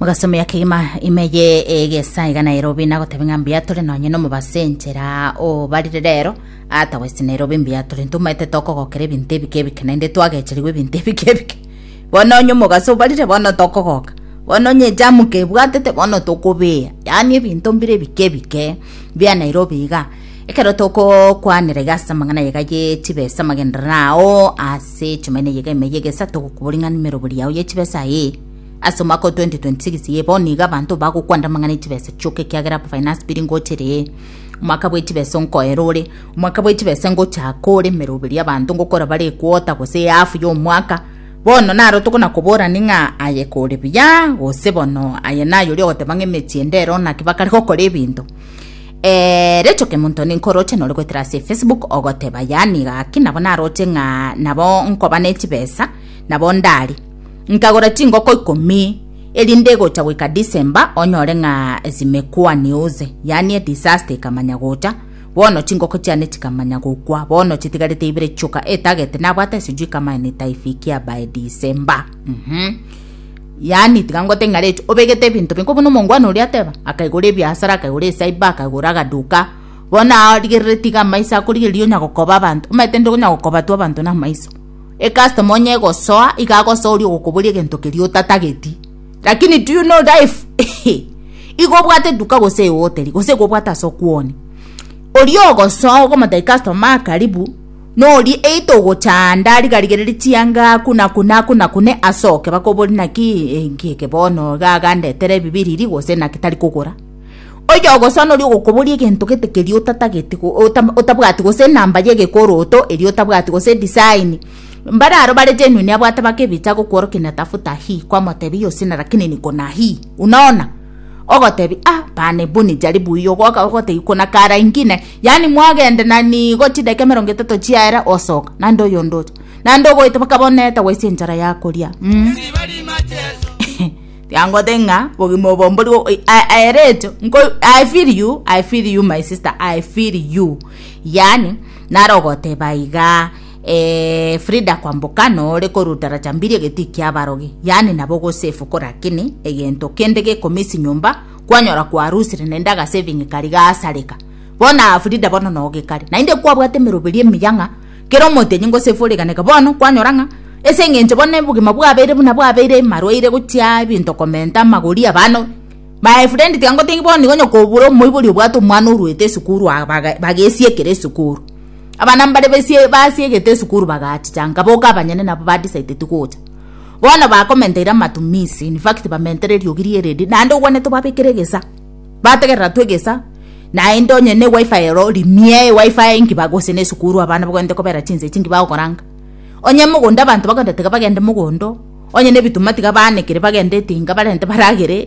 mugasomea kegima imeye egesa iga nairobi nagotebe ng'a mbuya tore nonye nomobase enchera obarire rero ata west nairobi mbuya tore ntomaete tokogokera ebinto ebike ebike naende twagecherigwe ebinto ebike ebike bono onye omogase obarire bono tokogoka bono onye ejamu kebwatete bono tokobea yaani ebinto mbire ebike ebike bia nairobi iga ekero tokokwanera iga ase amang'ana aiga ye chibesa amagenderero ao ase Ase echimaina eyio geime y'egesato gokobua ring'ana emerobori yao ye chibesa ee. Ase omwaka o 2026 iye bono iga abanto bagokwanda amang'ana echibesa chioka ekiagera aba finance bill ngochera ee. Omwaka bwe chibesa onkoera ore. Omwaka bwe chibesa ngochaka ore emeroberi y'abanto ngokora bare ekwota gose eafu y'omwaka. Bono naro tokonakoborani ng'a aye kore buya gose bono aye nayori ogoteba ng'a emechie ndero naki bakare gokora ebinto. Eeh Rachel Kemonto ninkoroche nore goetera ase Facebook ogoteba yaani gaki nabo naroche ng'a nabo nkoba ne chibesa nabo ndari nkagora chingoko ikomi erinde egocha goika December onyore ng'a zimekwa news yaani edisaster ikamanya gocha bono chingoko chiane chikamanya gokwa bono chitigarete ibere chioka etagete nabwate esijui kama enitaifikia by December mhm mm Yaani, tiga ngote ing'aretu, obegete ebinto biko buna omongwana oria ateba, akaigora ebiasara, akaigora esaiba, akaigora agaduka. Bono aa origerere tiga amaiso akorigereria onya gokoba abanto, omanyete nde onya gokoba tu abanto na amaiso. Ecustomer onye egosoa, iga agosoa oria ogokoboria egento keria otatageti. Lakini do you know life? Igo obwate eduka gose eoteri, gose igo obwate ase okwonia. Oria ogosoa ogomotebi customer aa karibu, Norie ei togochanda, riga rigererie chianga aku na aku na aku na aku, ne asoke. Bakobori naki enki eke bono iga agandetere ebibiriri gose naki tari kogora. Oyo ogosoa noria ogokobori egento gete keria otatageti otabwati gose enamba ye egekoroto eria otabwati gose edisaini. Mbare aro bare genuine abwate baka ebicha agokworokia natafuta hii kwamotebia iyo sina lakini niko na hii. Unaona? ogotebi ah bana ebu nijari buya ogoka ogotebi kona kara ingine yani mwagende na nigo chideka emerongo etato chiaera osoka nande oyonde ocha nande ogoeta baka bono eta gwaisa enchara yakoria mm. tiangote ng'a bogima obombori o- i- a- aerecho nko i feel you i feel you my sister i feel you yani nare ogoteba iga Ee, Frida kwamboka nore koruta rachambiri egetii kia abarogi, yaani nabo gosefu korakini egento kende gekomisi nyomba kwanyora kwarusire naende agasaving kari gasareka. Bono Frida bono nogekare. Naende kwabwate emeroberi emiya ng'a kera omotenyi ngosefu origaneke bono kwanyora ng'a ase eng'encho bono obogima bwabeire buna bwabeire marwaire gochia ebinto komenta amagori abano My friend tiangotebi bono nigo nyokobura omoibori obwate omwana orwete esukuru aa baga bagesiekera esukuru. Abana mbare baisie basiegete esukuru bagachicha nka boka abanyene nabo ba decided gocha. Bono bakomenteire amatumizi in fact bamentere eriogi rie ready naende ogwane tobabekere egesa bategerera tu egesa naende onye ne wifi ero rimie wifi nki bagose ne esukuru abana bagende kobera chinsa echi nki bagokora nka. Onye mogondo abanto bagoteba bagende mogondo onye ne ebituma tiga baanekire bagende etinga barente baragere.